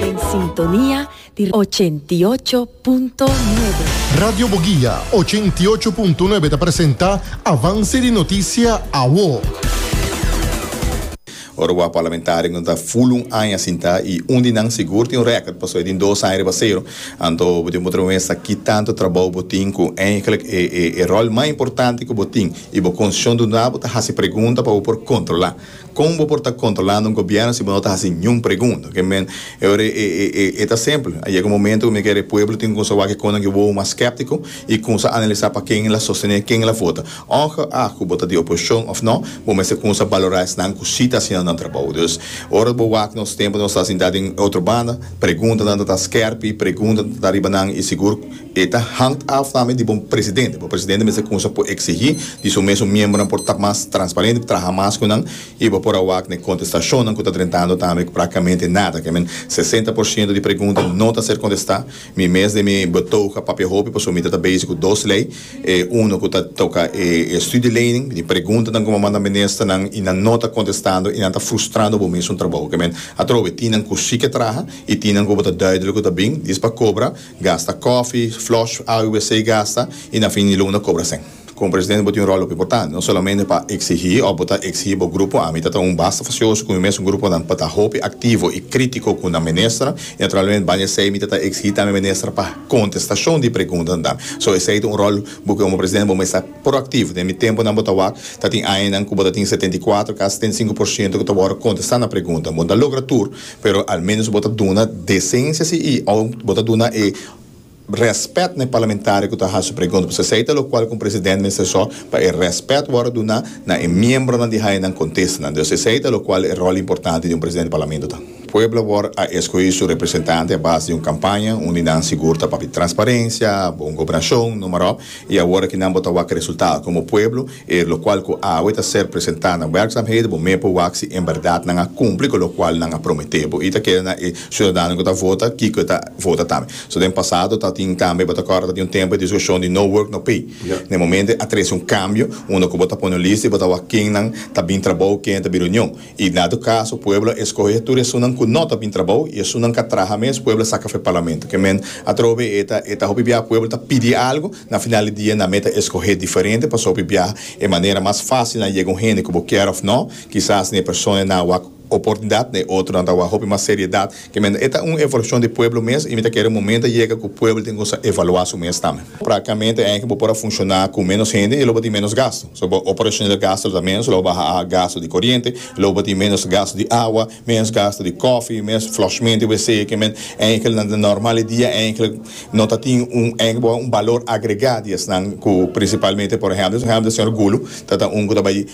Den sintonia di ochenta i ocho punto nuebe. Radio Boguia ochenta i ocho punto nuebe ta presenta Avance di Noticia Awo. Ora wak Parlamentarionan ta ful un aña sintá i un di nan sigur tin rèkòt pasobra e tin dos aña riba sero. Anto bo dibi mostrá mester ki tantu trabou bo tin ku eindelijk e ròl mas importante ku bo tin i bo konsyon duna bo ta hasi pregunta pa bo por kontrolá. Kon bo por ta kontrolando un gobierno si bo no ta hasi niun pregunta? Oke men, e ora e ta simpel. A yega un momento ku mi kere e pueblo tin konsá wak e konan ku e wowo mas skeptiko i konsá analisá pa ken el a sostené, ken el a vota. Ongeag ku bo ta di oposishon òf nò, bo mester konsá balorá esnan ku si ta hasiendo nan trabou. Dus, ora bo wak nos tempu nos ta sintá den e otro banda, preguntanan ta ta skèrpi, preguntanan ta ta riba nan i sigur, E ta hangt af tambe di bo presidente. Bo presidente mester cunsha por exigi di su mesun miembronan por ta mas transparente, por traha mas cu nan y bo por a wak n'e contestacionnan cu ta drentando tambe cu practicamente nada. Kemen sesenta por ciento di pregunta no ta ser contesta. Mi mes den mi betoog a papia hopi pasobra mi ta ta bezig cu dos ley. E uno cu ta toca e studieleining. Mi pregunta nan como manda ministernan y nan no ta contestando y nan ta frustrando bo mesun trabou. Kemen atrobe tin nan cu si ke traha y tin nan cu bo ta duidelijk cu ta bin, dis pa cobra. Gasta kòfi, flush awe wc gasta i na fin di luna kobra sèn. Komo presidente bo tin un ròl hopi importante, no solamente pa eksigí òf bo ta eksigí bo grupo, ami ta ta un basta fasioso ku mi mesun gruponan pa ta hopi aktivo i krítiko ku nan minister i naturalmente baña esei mi ta ta eksigí tambe minister pa kontestashon di preguntanan tambe. So esei ta un ròl bo komo presidente bo mester ta proaktivo. Den mi tempunan bo ta wak ta tin añanan ku bo ta tin setenta i kuatro, kasi setenta i sinku por siento ku ta wòrdu kontestá na pregunta. Bo no ta logra tur. Pero al menos bo ta duna decencia si y aun bo ta duna e respet na e parlamentario cu ta haci su pregunta. Pasobra esey ta locual cu un presidente mester zorg pa e respet wordo duna na e miembronan di haye nan contestanan. Dus esey ta locual e rol importante di un presidente di parlamento ta. Pueblo worg a escogi su representante a base di un campaña unda nan sigur ta papia transparencia, bon gobernacion, noemarop. I awor aki nan bo ta wak e resultado komo pueblo, e lokual ku awe ta ser presentá na wèrkzamheden, bo mei por wak si en bèrdat nan a kumpli ku lokual nan a prometé bo. I ta keda na e siudadano ku ta vota kiko e ta vota tambe. So den pasado ta tin tambe, bo ta kòrda ta tin un tempu e diskushon di no work, no pay. Na e momente a trese un kambio unda ku bo ta pone un lista i bo ta wak kennan ta bin trabou, kennan ta bin reunion. I na tur kaso pueblo a eskohe tur esunnan ku no ta bin trabou i esunnan ka traha mes, pueblo a saka fe parlamento. Kemen atrobe e ta e ta hopi biaha pueblo ta pidi algu, na final di dia nan me ta eskohe diferente pasobra hopi biaha e manera mas fásil na yega un hende ku bo kier òf no, kisas na e persona nan a wak oportunidat, na e otronan ta wak hopi mas seriedat Ciamente e ta un evaluacion di pueblo mes y mi ta kere momento a yega cu pueblo tin cu sa evalua su mes tambe. Practicamente e aña bo por a funciona cu menos hende y lo bo tin menos gasto. So bo operacional gasto lo ta menos, lo bo baha a gasto di coriente, lo bo tin menos gasto di awa, menos gasto di coffee, menos flushment di WC. Ciamente e aña kel nan ta normal e dia, e aña kel no ta tin un, e aña bo a un balor agrega di esnan cu principalmente por ehemplo, ehemplo señor Gulu ta ta un cu ta bay.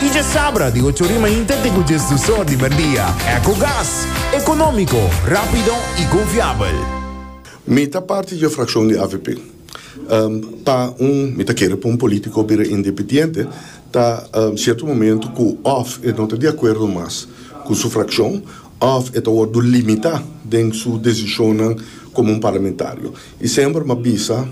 Y dje sabra di ocho ori mainta te cu djes dus or di merdia. Ecogas, economico, rapido y confiabel. Mi ta parti dje fraccion di avp. Pa un, mi ta kere pa un politico bira independiente, ta cierto momento cu of e no ta di acuerdo mas cu su fraccion of e ta wordo limita den su decisionnan como un parlamentario. I semper m'a bisa,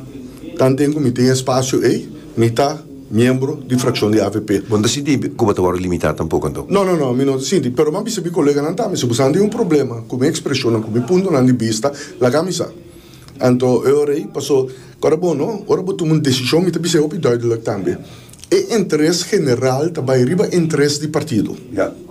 Kan tin ku mi tin e espasio ei, mi ta miembro di frakshon di avp. Bo no ta sinti ku bo ta wòrdu limitá tampoko anto? No, no, no, mi no ta sinti. Pero m'a bisa mi koleganan tambe, si bo sa tin un problema ku mi ekspreshonnan, ku mi puntonan di bista, laga mi sa. Anto e ora ei, paso, ku ora bo no, ora bo tuma un desishon, mi ta bisa e hopi duidelijk tambe. E interes general ta bai riba e interes di partido.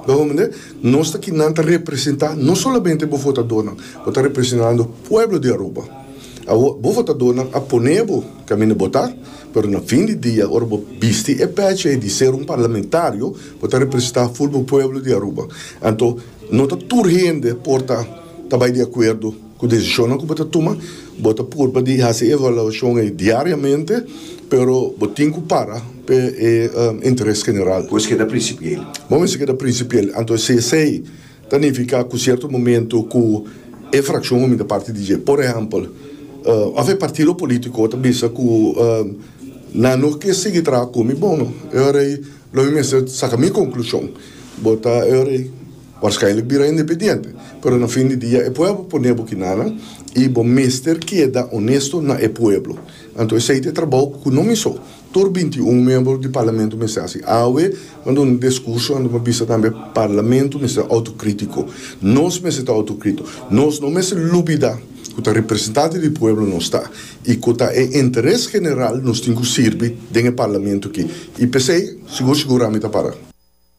Lo hopi mende, nos ta ki nan ta representa no solamente bo votadornan, bo ta representando pueblo di Aruba. Awo, bo votadornan a pone bo kaminda bota, pero na fin di dia, ora bo bisti e peche di ser un parlamentario, bo ta representa full bo pueblo di Aruba. Anto, no ta tur hende por ta ta bai di acuerdo. Ku desishonnan ku bo ta tuma, bo ta purba di hasi e evaluashon ei diariamente, pero bo tin ku para p'e e interes general. Bo mester keda prinsipiel. Bo mester keda prinsipiel. Anto si esei ta nifiká ku sierto momentu ku e frakshon homi ta parti di dje. Por ehèmpel, òf e partido polítiko ta bisa ku nan no ke sigui traha ku mi, bon, e ora ei lo mi mester saka mi konklushon. Bo ta, e ora ei. Waarschijnlijk bira independiente, pero na fin di dia e pueblo pone bo kinanan y bo mester keda honesto na e pueblo. Anto esey ta e trabao cu no miso tur binti i un miembro di Parlamento mester haci. Awe bo a duna un discurso anto bo a bisa tambe Parlamento mester autocritico. Nos mester ta autocrito. Nos no mester lubida cu ta representante di pueblo nos ta y cu ta e interes general nos tin cu sirbi den e Parlamento aki. Y pesey sigur sigur ami ta para.